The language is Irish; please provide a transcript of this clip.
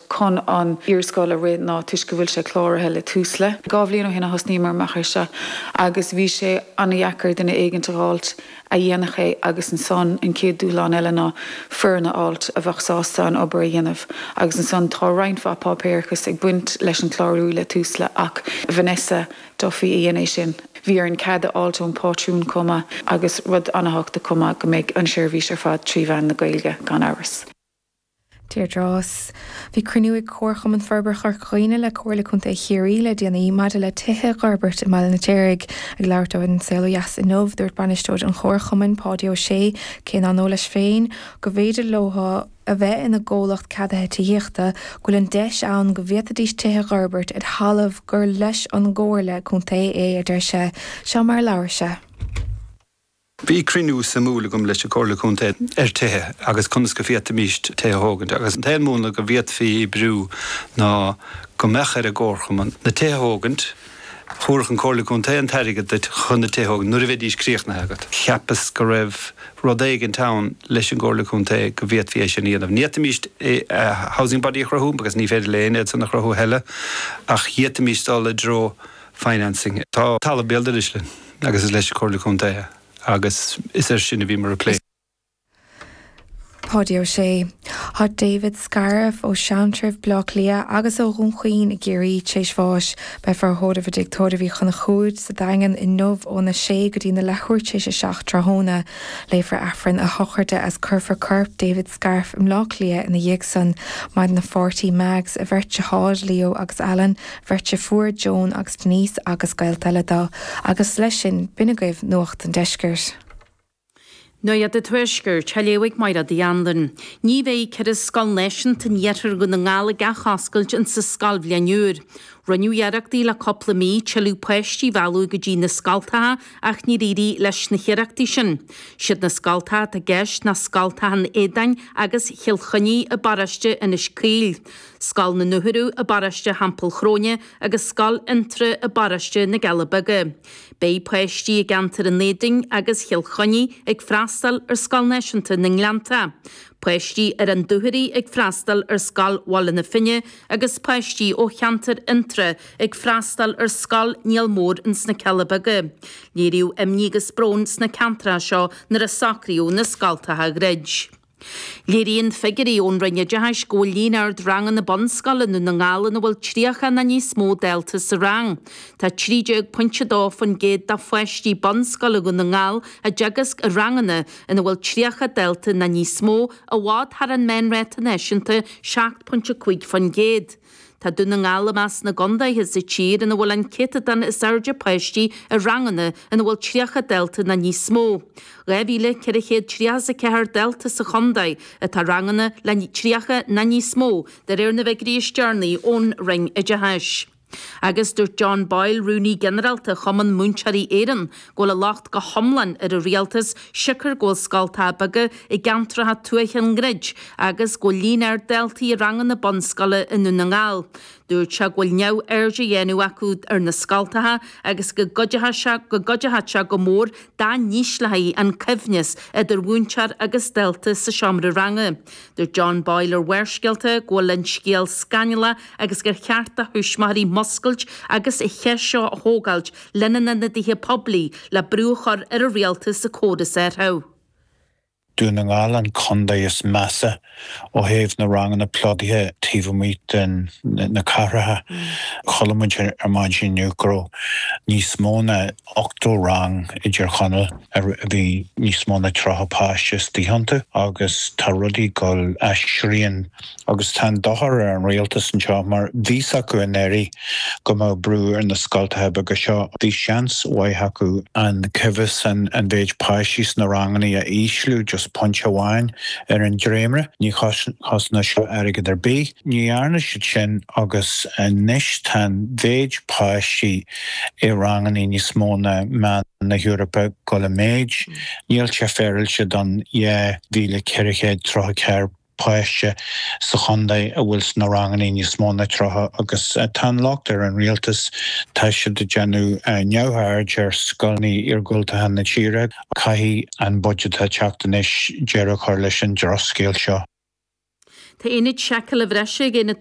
chun an iarscoil a rith ná toisc go bhfuil sé cláraithe le Tusla. Dhá bhliain ó shin a thosnaíomar amach ar seo agus bhí sé ana-dheacair duine éigint a dh'fháilt a dhéanfadh é agus ansan an chéad dúshlán eile ná foireann a fháilt a bheadh sásta an obair a dhéanamh agus ansan tá roinnt mhaith páipéarachais ag baint leis an clárú le Tusla ach Vanessa Duffy a dhein é sin. Bhí orainn cead a fháilt ón Pátrún comh maith agus rud ana-thábhachtach comh maith go mbeidh an seirbhís ar fad trí mheán na Gaeilge gan amhras. Deirdre, Bhí cruinniú ag Comharchumann Forbartha Chorca Dhuibhne le Comhairle Contae Chiarraí le déanaí maidir le tithe a dh'fhorbairt i mBaile an Fheirtéaraigh. Ag labhairt dó ar An Saol Ó Dheas inniu, dúirt bainisteoir an Chomharchumainn, Páidí Ó Sé, cé nár ndóigh leis féin go mb'fhéidir leo a bheith ina gcomhlacht ceadaithe tithíochta, go bhfuil an deis ann go bhféadfaidís tithe a dh'fhorbairt ar thalamh gur leis an gComhairle Contae é, a deir sé. Seo mar a labhair sé. Bhí cruinniú suimiúil agam leis an Chomhairle Contae ar tithe agus conas go bhféadfaimís tithe a thógaint agus an t-aon múnla go bhféadfaí oibriú ná go mbeadh ar an gComharchumann na tithe a thógaint. Thabharfadh an Comhairle Contae an t-airgead duit chun na tithe a thógaint nuair a bheidís críochnaithe agat. Cheapas go raibh rud éigint ann leis an gComhairle Contae go bhféadfaí é sin a dhéanamh. Ní fhéadfaimís Housing Body a chruthú because ní féidir le héinne iadsan a chruthú a thuilleadh ach fhéadfaimís dul i dtreo financing. Tá talamh béal dorais linn. agus is leis an Comhairle Contae agus is ar sin a bhíomar ag plé. Páidí Ó Sé. Tá David Scarff ó Sheantraibh, Bleá Cliath, agus ó Dhún Chaoin i gCiarraí t'réis bháis. Beifear á thórramh i dTigh Tórraimh Uí Chonchúir sa Daingean inniu óna sé go dtí na leathuair t'réis a seacht tráthóna. Léifear Aifreann a shochraide is cuirfear corp David Scarff i mBleá Cliath ina dhiaidh san. Maireann a pháirtí, Mags, a bheirt deartháir, Leo agus Alan, bheirt deirfiúr Joan agus Denise agus gaolta eile do, agus leis sin, b'in agaibh Nuacht an Deiscirt. Nuacht an Tuaiscirt, á léamh ag Máire D. Anluain. Ní bheidh ceithre scoil náisiúnta in iarthar Dhún na nGall ag athoscailt insa scoilbhliain úr. Rinneadh iarrachtaí le cúpla mí tuilleadh páistí a mhealladh go dtí na scoltacha ach níor éirigh leis na hiarrachtaí sin. Siad na scoltacha atá i gceist ná scoltacha an Éadáin agus Chill Chainnigh i bparóiste Inis Caoil. Scoil na Dúchoradh i bparóiste Theampall Chróine agus Scoil Fhionntrá i bparóiste na gCealla Beaga. Beidh páistí i gceantar an Éadáin agus Chill Chainnigh ag freastáil ar Scoil Náisiúnta na nGleannta, páistí ar an Dúchoraidh ag freastáil ar Scoil Bhaile na Finne agus páistí ó cheantar Fhionntrá ag freastáil ar Scoil Niall Mór ins na Cealla Beaga. Léiríodh imní agus brón sna ceantracha seo nuair a socraíodh na scoltacha a dhruid. Léiríonn figiúirí ón Roinn Oideachais go bhfuil líon ard ranganna bunscoile i nDún na nGall ina bhfuil 30 ná níos mó dalta sa rang. Tá 13.2% de pháistí bunscoile Dhún na nGall á dteagasc i ranganna ina bhfuil 30 dalta ná níos mó, i bhfad thar an meánráta náisiúnta 7.5%. Tá Dún na nGall i measc na gcondaetha sa tír ina bhfuil an céatadán is airde páistí i ranganna ina bhfuil 30 dalta ná níos mó. 2,434 dalta sa chondae atá i ranganna le 30 ná níos mó de réir na bhfigiúirí is deireanaí ón Roinn Oideachais. Agus dúirt John Boyle, Rúnaí Ginearálta Chumann Múinteoirí Éireann, go bhfuil an locht go hiomlán ar an Rialtas siocair go bhfuil scoltacha beaga i gceantracha tuaithe á ndruid agus go bhfuil líon ard daltaí i ranganna bunscoile i nDún na nGall. Dúirt sé go bhfuil neamhaird á dhéanamh acu ar na scoltacha agus go gcuid go gcuideochadh sé go mór dá n-ísleofaí an cóimheas idir mhúinteoir agus dalta sa seomra ranga. Dúirt John Boyle ar Bharrscéalta go bhfuil an scéal scannalach agus gur cheart do thuismitheoirí múscailt agus an cheist seo a thógáilt lena n-ionadaithe poiblí, le brú a chur ar an Rialtas sa chás a thabhairt. Dún na nGall an contae is measa ó thaobh na ranganna plodaithe taobh amuigh de na cathracha. Chuala muid ar maidin inniu go raibh níos mó ná 80 rang i dTír Chonaill a bhí níos mó ná 30 páiste istigh iontu agus tá rudaí ag dul ó shrian. Agus tá an dochar ar an Rialtas anseo mar bhí a fhios acu i ndáiríre go mbeadh brú ar na scoltacha beaga seo. Bhí seans maith acu an cóimheas, an mhéid páistí sna ranganna a ísliú just pointe amháin ar an dréimre. Ní chosnódh seo airgead ar bith. Ní dhearna siad sin agus anois tá an mhéid páistí i ranganna níos mó ná meán na hEorpa ag gabháil i méid. Níl sé féaráilte don 2434. páiste sa chondae a bhfuil sna ranganna níos mó ná 30 agus tá an locht ar an Rialtas. Tá siad ag déanamh neamhaird ar scoileanna iargúltacha na tíre. Caithfidh an budget atá ag teacht anois deireadh a chur leis an drochscéal seo. Tá Ionad Seiceála Bhreise ag Aonad